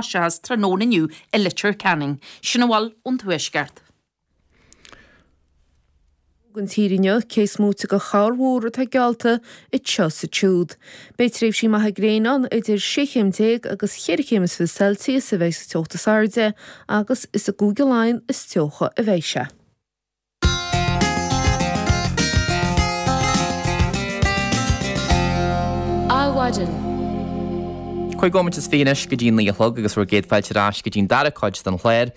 theas tráthnóna inniu i Leitir Ceanainn. Sin a bhfuil ón Tuaisceart. Don tír inniu cé is móite de chorrmhúr atá geallta anseo is ansiúd. Beidh tréimhsí maithe gréine ann idir sé chéim déag agus cheithre chéim is fiche celsius a bheidh sa teocht is airde agus is i gCúige Laighean is teocha a bheidh sé. Adhmhaidin. Cúig nóiméad is fiche anois go dtí a naoi a chlog agus bhur gcéad fáilte ar ais go dtí an dara cuid den chlár.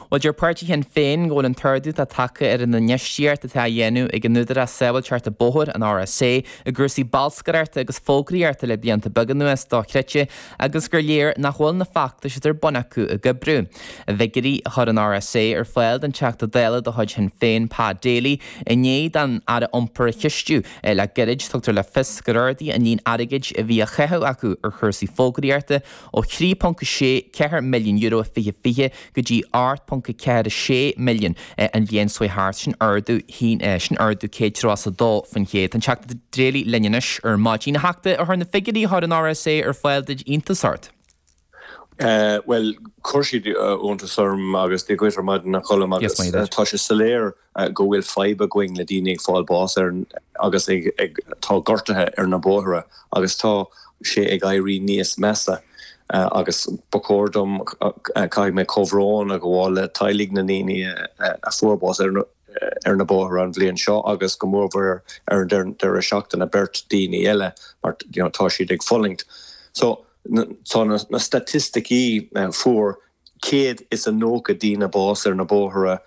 Bhuel, deir páirtí Shinn Féin go bhfuil an t-ardú atá tagtha ar an infheistíocht atá á dhéanamh ag an Údarás Sábháilteachta Bóthair, an RSA, i gcúrsaí bolscaireachta agus fógraíochta le blianta beaga anuas dochreidte agus gur léir nach bhfuil na feachtais atá ar bun acu ag oibriú. I bhfigiúirí a chuir an RSA ar fáil don Teachta Dála de chuid Shinn Féin Pa Daly i ndiaidh dó an tAire Iompair a cheistiú le gairid, tugtar le fios gur ardaíodh an líon airgid a bhí á chaitheamh acu ar chúrsaí fógraíochta ó €3.64 milliún i 2020 go dtí €8.46 milliún an bhliain seo thart. Sin ardú sin ardú 132% Tá an Teachta Daly linn anois ar maidin. A Theachta, ar chuir na figiúirí a chuir an RSA ar fáil duit iontas ort? Bhuel, chuir siad iontas orm agus Dia dhuit ar maidin a Choilm agus tá sé soiléir go bhfuil fadhb againn le daoine ag fáil bás agus ag ag tá gortuithe ar na bóithre agus tá sé ag éirí níos measa agus ba chóir dom caithfidh mé comhbhrón a ghabháil le teaghlaigh na ndaoine a fuair bás ar na ar na bóithre an bhliain seo agus go mór-mhor ar an deireadh seachtaine beirt daoine eile mar you know tá siad ag fulaingt so Tá na staitisticí fuair 190 daoine bás ar na bóithre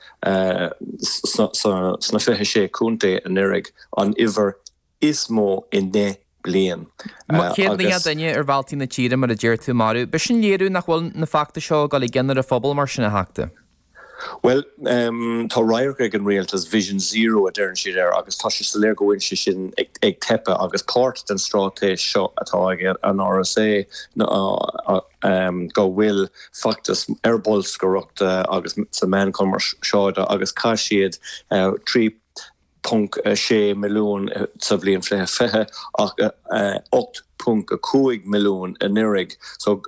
sna 26 Contae anuiridh, an uimhir is mó i ndeich bliain. 190 duine ar bhealtaí na tíre mar a deir tú maraithe. Ab shin léiriú nach bhfuil na feachtais seo ag dul i gcion ar an phobal mar sin a theachta. Bhuel, tá radharc ag an rialtas, vision zero a deireann siad air, agus tá sé soiléir go bhfuil sé sin ag teipeadh agus páirt den stráitéis seo atá ag an rsa ná go bhfuil feachtas ar bolscaireacht agus sa meáin cumarsáide agus chaith siad trí .6 milliún sa bhliain 2020 ach 8.5 milliún anuraidh so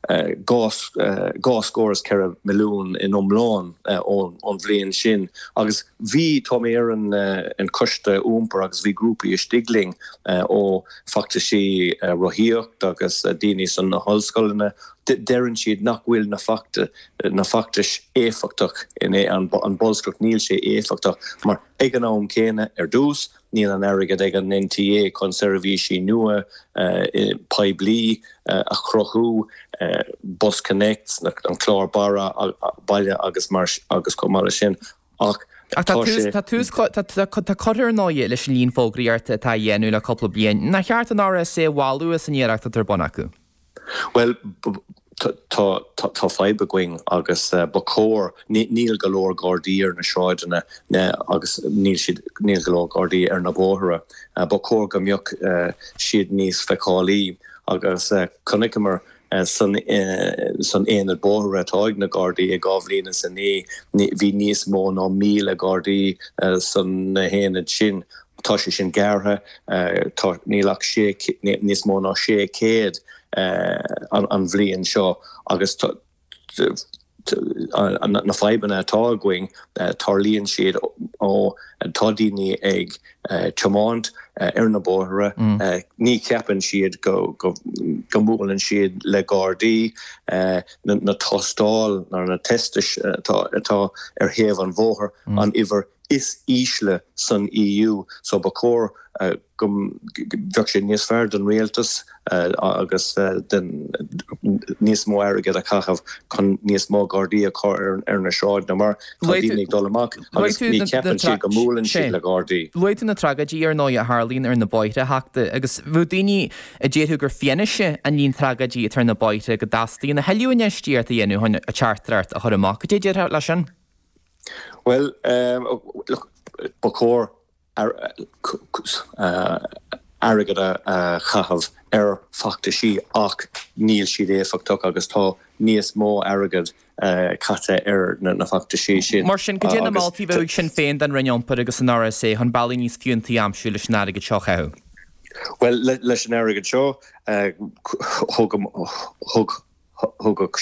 dhá scór is ceithre milliún in iomlán ón bhliain sin agus bhí, tá mé ar an choiste iompair agus bhí grúpaí istigh linn ó feachtaisí rothaíocht agus daoine san na hollscoileanna, deireann siad nach bhfuil na feachtais. na feachtais éifeachtach in aon bolscaireacht níl sé éifeachtach mar ag an am céanna ar dtús níl an airgead ag an NTA chun seirbhísí nua poiblí a chruthú Bus Connect an clár barra baile agus mar agus chomh maith leis sin ach ach tá tús curtha ar ndóigh leis an líon fógraí ort atá á dhéanamh le cúpla bliain. Nach cheart an RSA a mholadh as an iarracht atá ar bun acu? Bhuel, tá fadhb againn agus ba chóir, níl go leor Gardaí ar na sráideanna agus níl go leor Gardaí ar na bóithre. Ba chóir go mbeadh siad níos feiceálaí agus chonaiceamar san aonad bóithre atá ag na Gardaí i dhá bhliain is a naoi, bhí níos mó ná míle Gardaí san aonad sin. Tá sé sin gearrtha. Tá, níl ach sé, níos mó ná 600 an bhliain seo agus na fadhbanna atá againn, tarlaíonn siad ó tá daoine ag tiomáint ar na bóithre, ní cheapann siad go mbuaileann siad le Gardaí, na tástáil nó na tests atá ar thaobh an bhóthair, an uimhir is ísle san EU so ba chóir go mbeadh sé níos fearr don rialtas agus den níos mó airgead a chaitheamh chun níos mó gardaí a chur ar na sráideanna mar tá daoine ag dul amach agus ní cheapann siad go mbuaileann siad le gardaí. Luaigh tú na tragóidí ar ndóigh a tharlaíonn ar na bóithre a Theachta agus bheadh daoine a déarfadh gur fianaise é an líon tragóidí atá ar na bóithre go dteastaíonn a thuilleadh infheistíocht a dhéanamh chun an teachtaireacht a chur amach. Cad é a déarfá leis sin? Bhuel, ba chóir airgead a chaitheamh ar feachtaisí ach níl siad éifeachtach agus tá níos mó airgead caite ar na feachtaisí sin. Mar sin, cad é na moltaí a bheadh ag Sinn Féin don Roinn Iompair agus an RSA chun bealaí níos fiúntaí a aimsiú leis an airgead seo a chaitheamh? Bhuel, leis an airgead seo, ugh